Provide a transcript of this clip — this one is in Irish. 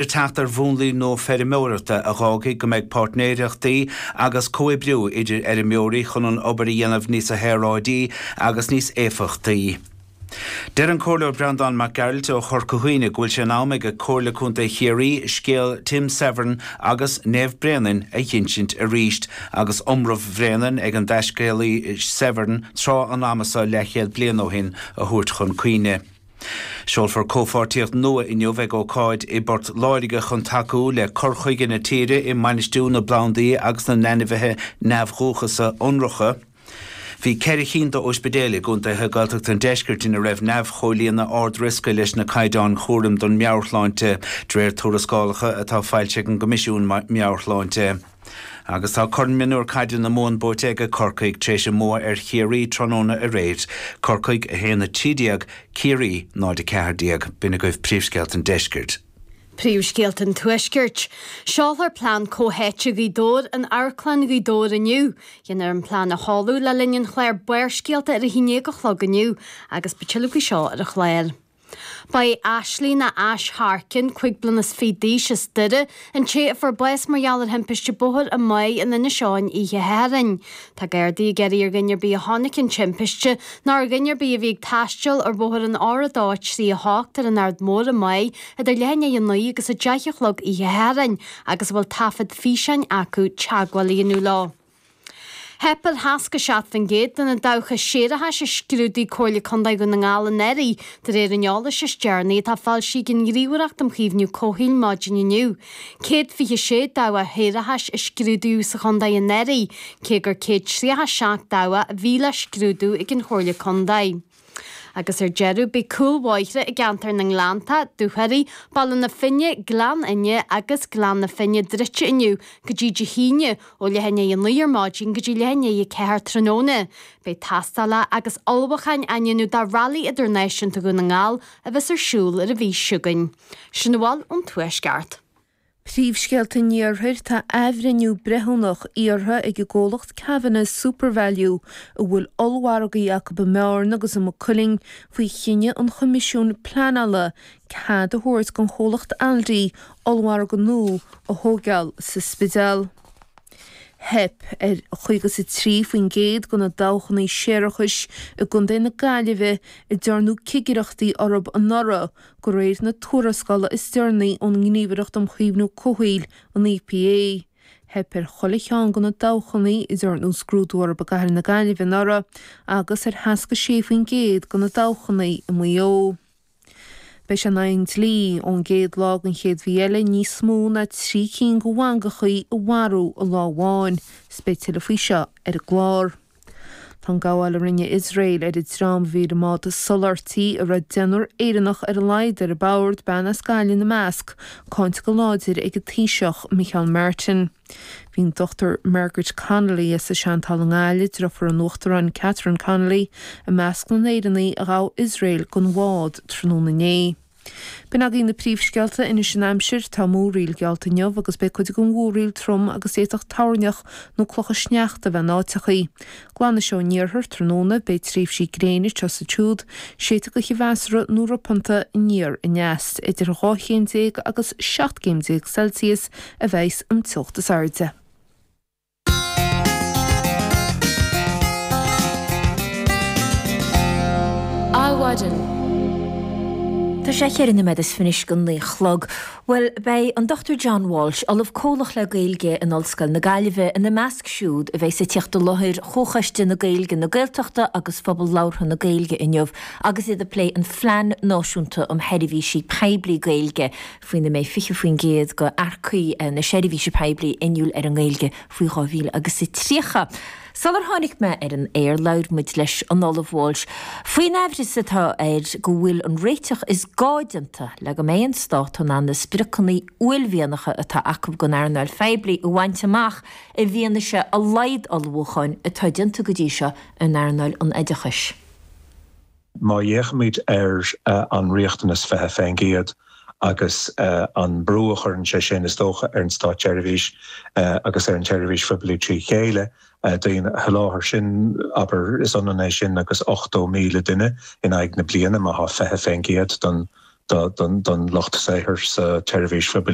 le teacht ar mhúnlaí nua feirmeoireachta a dh'fhágfaidh go mbeidh páirtnéireachtaí agus comhoibriú idir fheirmeoirí chun an obair a dhéanamh níosa shaoráidí agus níos éifeachtaí. Deir an Comhairleoir Breandán Mac Gearailt ó Chorca Dhuibhne go bhfuil sé in am ag Comhairle Contae Chiarraí scéal Tim Severin agus Naomh Bréanainn a dh'insint arís agus iomramh Bhréanainn ag an dtaiscéalaí Severin tráth an ama seo leathchéad bliain ó shin a thabhairt chun cuimhne. Seolfar comhpháirtíocht nua inniu ag ócáid i bPort Láirge chun tacú le cur chuige na tíre i mbainistiú na bplandaí agus na n-ainmhithe neamhdhúchasa ionracha. Bhí ceithre chinn d'óispidéil i gcontaetha Gaeltachta an Deiscirt ina raibh neamh-chomhlíonadh ard-riosca leis na caighdeáin chúraim don mheabhairshláinte, de réir tuarascálacha atá foilsithe ag an gCoimisiún Meabhair-Shláinte. Agus tá Corn Mionúr Caide na Mumhan buaite ag Corcaigh tar éis a mbua ar Chiarraí tráthnóna aréir, Corcaigh 1, 13, Ciarraí 0, 14. B'in agaibh príomhscéalta an deiscirt. Príomhscéalta an tuaiscirt. Seolfar plean comhtháite Ghaoth Dobhair in Amharclann Ghaoth Dobhair inniu. Déanfar an plean a sheoladh le linn an chláir Barrscéalta ar a haon déag a chlog inniu agus beidh tuilleadh faoi seo ar an chlár. Ba í Aisling nó Ash Harkin, cúig bliana is fiche d'aois, as Doire, an té a fuair bás mar gheall ar thimpiste bóthair i Magh in Inis Eoghain oíche Shathairn. Tá Gardaí ag iarraidh ar dhuine ar bith a chonaic an timpiste, nó ar dhuine ar bith a bhí ag taisteal ar bhóthar an R238 ar an Aird Mhór i Magh idir leath i ndiaidh a naoi agus a deich a chlog oíche Shathairn agus a bhfuil taifead físeáin acu, teagmháil a dhéanamh leo. Theip ar sheasca seacht faoin gcéad de na dabhcha séarachais a scrúdaigh Comhairle Contae Dhún na nGall anuraidh, de réir an eolais is deireanaí atá foilsithe ag an nGníomhaireacht um Chaomhnú Comhshaoil maidin inniu. Céad fiche sé dabhcha shéarachais a scrúdaíodh sa chontae anuraidh, cé gur céad tríocha seacht dabhcha a bhí le scrúdú ag an Chomhairle Contae. Agus ar deireadh beidh cúlbhóithre i gceantar na nGleannta, Dúchoraidh, Baile na Finne, Gleann Fhinne agus Gleann na Finne druidte inniu go dtí Dé hAoine, ó leath i ndiaidh a naoi ar maidin go dtí leath i ndiaidh a ceathair tráthnóna. Beidh tástáil agus ullmhúcháin á ndéanamh do Railí Idirnáisiúnta Dhún na nGall a bheas ar siúl an mhí seo chugainn. Sin a bhfuil ón Tuaisceart. Príomhscéalta an Iarthair Tá athbhreithniú breithiúnach iarrtha ag an gcomhlacht Kavanagh Supervalu, a bhfuil ollmhargaí acu i mBearna agus i Maigh Cuilinn, faoi chinneadh an Choimisiúin Pleanála cead a thabhairt don chomhlacht Aldi ollmhargadh nua a thógáil sa Spidéal. Theip ar chaoga is a trí faoin gcéad de na dabhchanna séarachais i gContae na Gaillimhe a dearnadh cigireachtaí orthu anuraidh, De réir na tuarascála is deireanaí ón nGníomhaireacht um Chaomhnú Comhshaoil, an EPA, theip ar chuile cheann de na dabhchannaí a ndearnadh scrúdú orthu i gCathair na Gaillimhe anuraidh agus ar sheasca 6 faoin gcéad de na dabhchannaí i Maigh Eo. Beidh sé in aghaidh an dlí, ón gcéad lá den chéad mhí eile, níos mó ná trí cinn de mhangachaí a mharú i lá amháin, agus beidh tuilleadh faoi seo ar an gclár. Tá an gabháil a rinne Iosrael ar an dream a bhí ar an mbád soláthairtí, a raibh deichniúr Éireannach ar a laghad ar bord, bean as Gaillimh ina measc, cáinte go láidir ag an Taoiseach, Micheál Martin. Bhí an Dr Margaret Connolly as an Seantál i nGaillimh, drifiúr an Uachtaráin Catherine Connolly, i measc na nÉireannach a ghabh Iosrael den bhád tráthnóna inné. B'in agaibh na príomhscéalta Anois an Aimsir, Tá múraíl geallta inniu agus beidh cuid den mhúraíl trom agus d'fhéadfadh toirneach nó clocha sneachta a bheith in áiteachaí. Glanfaidh sé san iarthar, tráthnóna beidh tréimhsí gréine seo is siúd, séidfidh gaoth mheasartha nó ropanta aniar aneas. Idir 12 chéim agus 17 gcéim Celsius a bheidhs an teocht is airde. Adhmhaidin. Tá sé a ceithre noiméad is fiche anois chun a naoi a chlog. Bhuel, beidh an Dr. John Walsh, Ollamh Comhlach le Gaeilge in Ollscoil na Gaillimhe, ina measc siúd a bheidheas ag teacht i láthair Chomhchoiste na Gaeilge, na Gaeltachta agus Phobal Labhartha na Gaeilge inniu agus iad ag plé an Phlean Náisiúnta um Sheirbhísí Poiblí Gaeilge. faoina mbeidh 20% de earcaigh na seirbhíse poiblí inniúil ar an nGaeilge faoi 2000 agus a tríocha. Sular tháinig muid ar an aer labhair muid leis an Ollamh Walsh faoin aimhreas atá air go bhfuil an réiteach is gá déanta le go mbeidh an Stát in ann na spriocanna uaillmhianacha atá acu don earnáil phoiblí a bhaint amach i bhfianaise a laghad ullmhúcháin atá déanta go dtí seo in earnáil an oideachais. Má fhéachaimid ar an riachtanas 20% agus an brú a chuireann sé sin, is dócha, ar an státseirbhís agus ar an tseirbhís phoiblí trí chéile, daoine a sholáthar, sin, abair, is ionann é sin agus 80,000 duine in aghaidh na bliana má tá 20% don lucht saothair sa tseirbhís phoiblí.